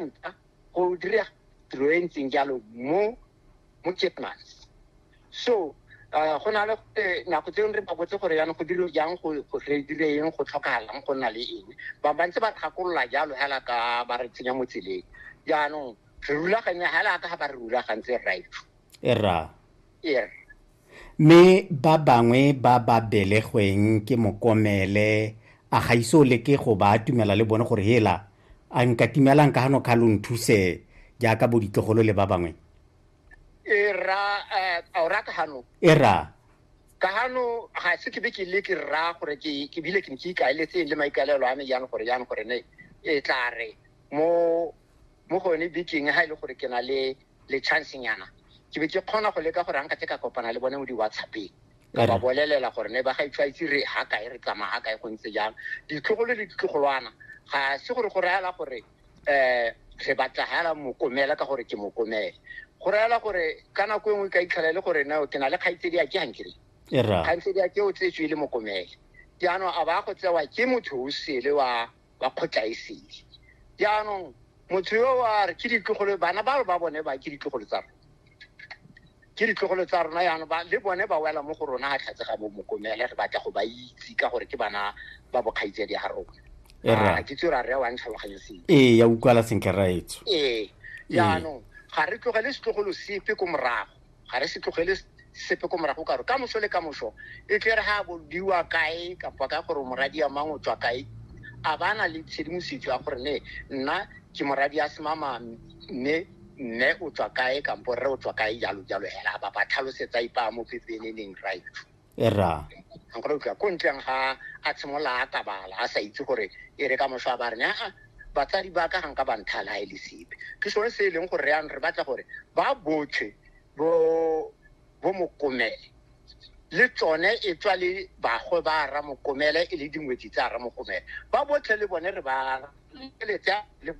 nka go dira tiro e ntseng jalo mo mo Chipmans so uh, go na le eh, nako tseo re ba botse gore yana go dilo jang go go re dire eng go tlhokagalang go nna le eng ba ba ntse ba tlhakolola jalo hela ka ba re tsenya mo tseleng jaanong re rulaganya hela ka ga ba re rulagantse right e rra yes mme ba bangwe ba ba belegweng ke mokomele a ga iso le ke go ba atumela le bone gore hela a nka timelang ka gano kga lo nthuse jaaka bo ditlogolo le ba bangwe e ra eh, a o ra ka gano e ra ka gano ga se ke be ke le ke ra gore ke ke bile ke ntse ikaeletseng le maikaelelo a me jang gore jang gore ne e tla re mo mo gone bekeng ga e le gore ke na le le chance nyana ke be ke kgona go leka gore anka tse ka kopana le bone mo di-whatsappeng ka ba bolelela gore ne ba ga itshwaitse re ha kae re tsamaya ga kae go ntse jang ditlogolo le ditlogolwana ga se gore go rayala gore um re batla hela mokomela ka gore ke mokomele go rayala gore ka nako e nngwe ka itlhela e le gore nao ke na le kgaitsedi a ke gankere kgaitsedi a ke o tsetswe e le mokomele jaanong a ba go tsewa ke motho o sele wa ba kgotlaesele jaanong motho yo wa re ke ditlogolo bana ba ba bone ba ke ditlogolo tsa rona ke ditlogolo tsa rona yana ba le bone ba wela mo go rona ga tlhatse ga bo mokomele re batla go ba itse ka gore ke bana ba bokgaitse di ga rona ah, ke tse ra re wa ntlhaloganye seng ee ya utlwala sentle raetso ee jaanong ga re tlogele setlogolo sepe ko morago ga re se tlogele sepe ko morago karo ka moso le ka moso e tle re ga bodiwa kae kapa ka gore moradi ya mang o tswa kae a ba na le tshedimosetso ya gore ne nna ke moradi ya semama mme mme o tswa kae kampo rre o tswa kae jalo jalo hela ba ba tlhalosetsa ipa mo pepeneneng right ra a go utlwa ko ntleng ga a tshimolola a kabala a sa itse gore e re ka moswa ba re aa batsadi ba ka ga nka banthala ga e le sepe ke sone se e leng gore yanong re batla gore ba botlhe bo bo mokomele le tsone e tswa le bagwe ba ra mokomele e le dingwetsi tsa ra mokomele ba botlhe le bone re ba letse le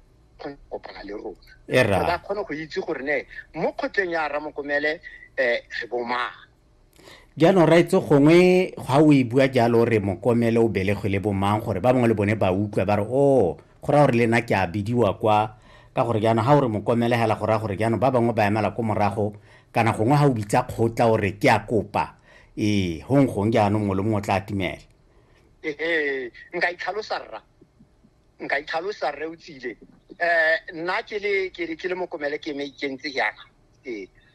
kopana le rona e ba kgone go itse gore ne mo kgotleng ya ra mokomele um re bomang jaanong raetse gongwe ga o e bua jalo re mokomele o belegwe le bomang gore ba bangwe le bone ba utlwa ba re o oh, go raya gore le nna ke a bidiwa kwa ka gore jaanong ga o re mokomele fela go raya gore jaanong ba bangwe ba emela ko morago kana gongwe ga o bitsa kgotla o re ke a kopa ee gong gong jaanong mongwe le mongwe o tla atumela ee nka itlhalosa rra nka itlhalosa rre o tsile um nna ke le mokomele ke me ikentse yana ee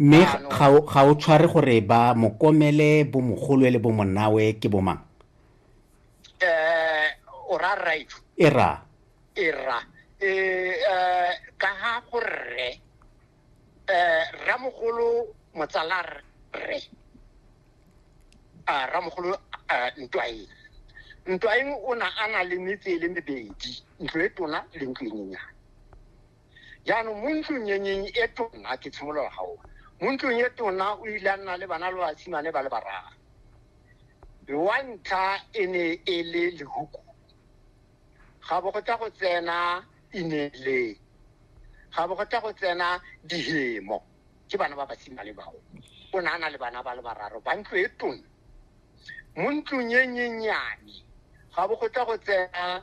mme ah, ga o tshware gore ba mokomele bo mogolwe le bo monawe ke bomang eh o ra right e ra e ra e eh, ka ha go rre eh ramogolo motsala rre a ah, ramogolo eh, ntwae ntwaeng o na a na le metse e le mebedi ntlo e tona le ntlo e nyenyane jaanong mo ntlong e nyeng e tona ke tshimolola gaoa mo ntlong e tona o ile a nna le bana le basimane ba le barara wa ntlha e ne e le lehuku ga bo go tla go tsena inele ga bo go tla go tsena dihemo ke bana ba basimane bao o ne a na le bana ba le bararo ba ntlo e tona mo ntlong e nyenyane ga bo go tla go tsena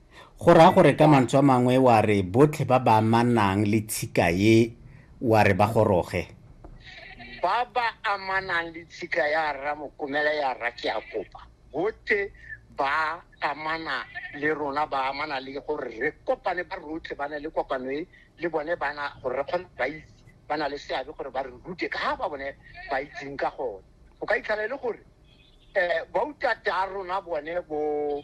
Go raya gore ka mantswe a mangwe wa re botlhe ba ba amanang le tshika e wa re ba goroge? Ba ba amanang le tshika ya Rra Mokomele ya Rra Keakopa botlhe ba amana le rona, ba amana le gore re kopane ba rotlhe ba ne le kopano e le bone bana gore re kgone ba itse ba na le seabe gore ba re rute ka ga ba bone ba itseng ka gone. O ka itlhela e le gore um bautat'a rona bone bo